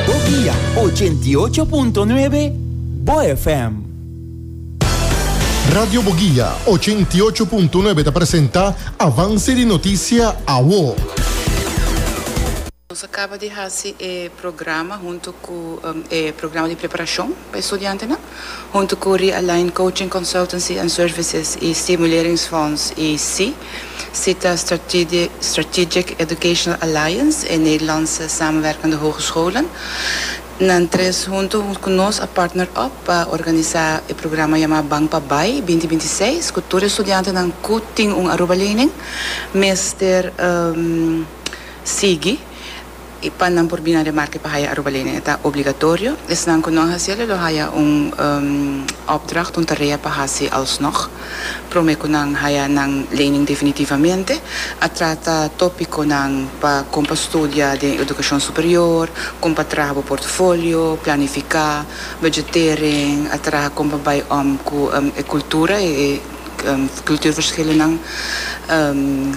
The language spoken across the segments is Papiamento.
Bovia ochenta i ocho punto nuebe, bo FM. Radio Bogia ochenta i ocho punto nuebe ta presenta Avance di Noticia Awo. Nos a caba di haci e programa hunto cu e programa di preparacion pa e studiantenan. Huntu ku Realign Coaching Consultancy and Services i Stimuleringsfonds, ICSI, si ta Strategic Educational Alliance, e Nederlandse Samenwerkende Hogescholen, nan tres huntu ku nos a partner op pa organisa e programa yamá Ban pa Bai binti binti seis ku tur e studiantenan ku tin un Aruba lening mester sigui. E pa nan por bina remarke pa haya Aruba Lane e ta obligatorio. Esnan ku no a hasiel e lo haya un opdracht, un tarea pa hasi alsnog. Prome ku nan haya nan lening definitivamente, a trata topikonan pa kon pa studia den edukashon superior, kon pa traha bo portofolio, planifiká, budgetering, a traha kon pa bai om ku e kultura, e. kulturverschilennan,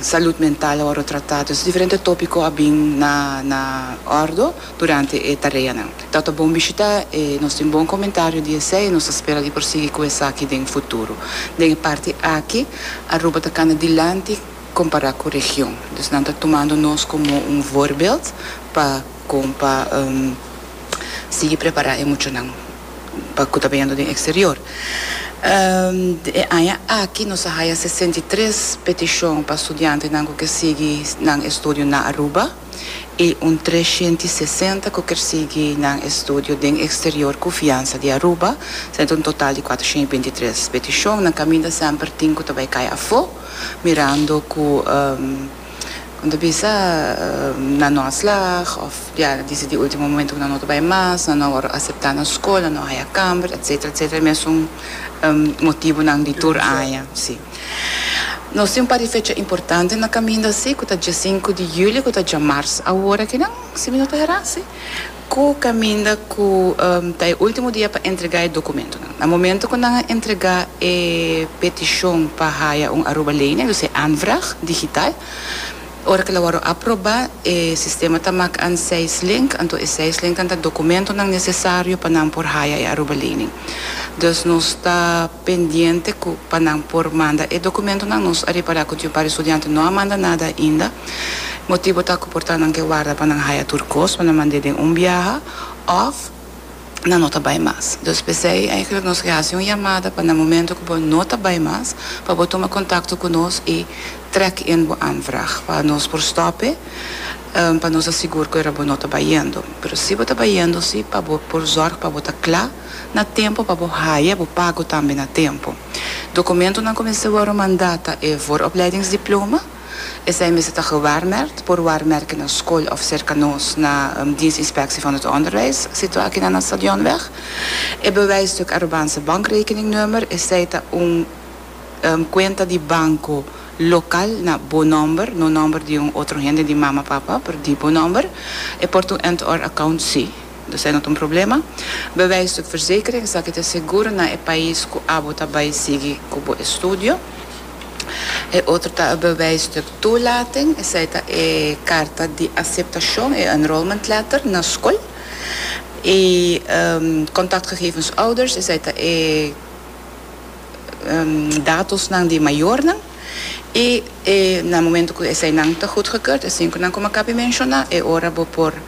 salud mental a wòrdu tratá. Dus diferente tópiko a bin na na òrdu durante e tareanan. Ta ta bon bishitá e nos tin bon komentario di esei i nos ta spera di por sigui ku esaki den futuro. Den e parti aki Aruba ta kanda dilanti kompará ku region. Dus nan ta tumando nos komo un voorbeeld pa kon pa sigui prepará e muchanan. pa ku ta beyendo den eksterior. E aña aki nos a haya sesenta i tres petishon pa studiantenan ku ke sigui nan estudio na Aruba i un tres shenta i sesenta ku ker sigui nan estudio den eksterior ku fiansa di Aruba. Sende ta un total di kuater shen i binti tres petishon. Nan kaminda semper tin ku ta bai kai afó mirando ku. Con ta bisa nan no a slag of ya dici di ultimo momento cu nan no ta bay mas, nan no a worde acepta na scol, nan no a haya camber, etcetera, etcetera, mesun motibonan di tur aña, si. Nos tin un par di fecha importante na caminda, si, cu ta djasinku di julio cu ta djamarz awor aki nan, si mi no ta hera, si. Ku kaminda ku ta e último dia pa entregá e dokumentonan. Na momento ku nan a entregá e petishon pa haya un arubaleneng, dus e aanvraag, digital, ora ku el a wòrdu aprobá, e sistema ta mak an seis link, anto e seis linknan ta dokumentonan nesesario pa nan por haya e arubaleneng. Dus nos ta pendiente ku pa nan por manda e dokumentonan. Nos a repará ku tin un par di studiante no a manda nada ainda. Motibu ta cu por ta nan ke warda pa nan haya tur cos pa nan mand'é den un biaha of nan no ta bay mas. Dus p'esey eigenlijk nos ke haci un yamada pa na momento cu bo no ta bay mas pa bo tuma contacto cu nos y trek in bo aanvraag pa nos por stop'é pa nos ta sigur cu era bo no ta bay yendo. Pero si bo ta bay yendo si pa bo por zorg pa bo ta cla na tempo pa bo haya bo pago tambe na tempo. Documentonan cu mester worde manda ta e vooropleidingsdiploma, Esei mester ta gewaarmerkt por waarmerken na skol òf serka nos na Dienst Inspectie van het Onderwijs, situa akinan na Stadionweg. E bewijsstuk aroban se bankrekeningnummer, esei ta un kuenta di banko lokal na bo nòmber, no nòmber di un otro hende, di mama, papa, pero di bo nòmber. E por ta un end-or account sí, dus ei no ta un problema. Bewijsstuk verzekering, esaki ta seguro na e pais ku abo ta bai sigui ku bo estudio. E otro ta e bewijs di toelating, esei ta e karta di aseptashon, e enrollment letter, na skol. E kontaktgegevens ouders, esei ta e datosnan di mayornan. I na momento ku eseinan ta gudgekeurd, esin ku nan komo a kapi menshoná, e ora bo por.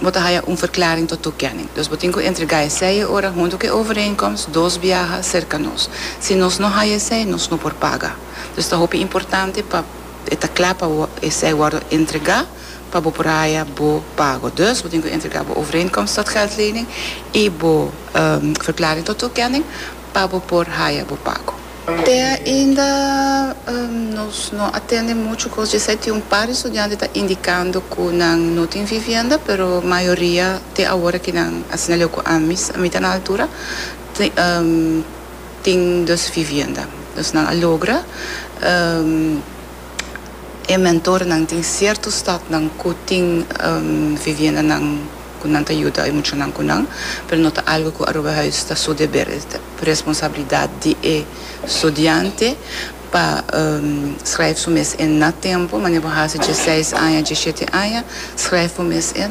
bo ta haya un verklaring to toekenning. Dus bo tin ku entregá esei e ora huntu ku e overeenkomst dos biaha serka nos. Si nos no haya esei, nos no por paga. Dus ta hopi importante pa e ta kla pa esei wòrdu entregá pa bo por haya bo pago. Dus bo tin ku entregá bo overeenkomst tot geldlening i bo verklaring tot toekenning pa bo por haya bo pago. Te ainda nos no a tende muchu cos dje esei. Tin un par di studiante ta indicando cu nan no tin vivienda, pero mayoria te awor aki nan asina leu cu ami, a mita na altura, tin dos vivienda. Nos nan a logra. e mentornan tin cierto stadnan cu tin viviendanan cu nan ta yuda e muchanan cu nan, pero no ta algo cu Aruba Huis ta su deber, es ta responsabilidad di e studiante pa schrijf su mes en na tempo, manera bo hasi dje seis aña, dje shete aña, schrijf bo mes en.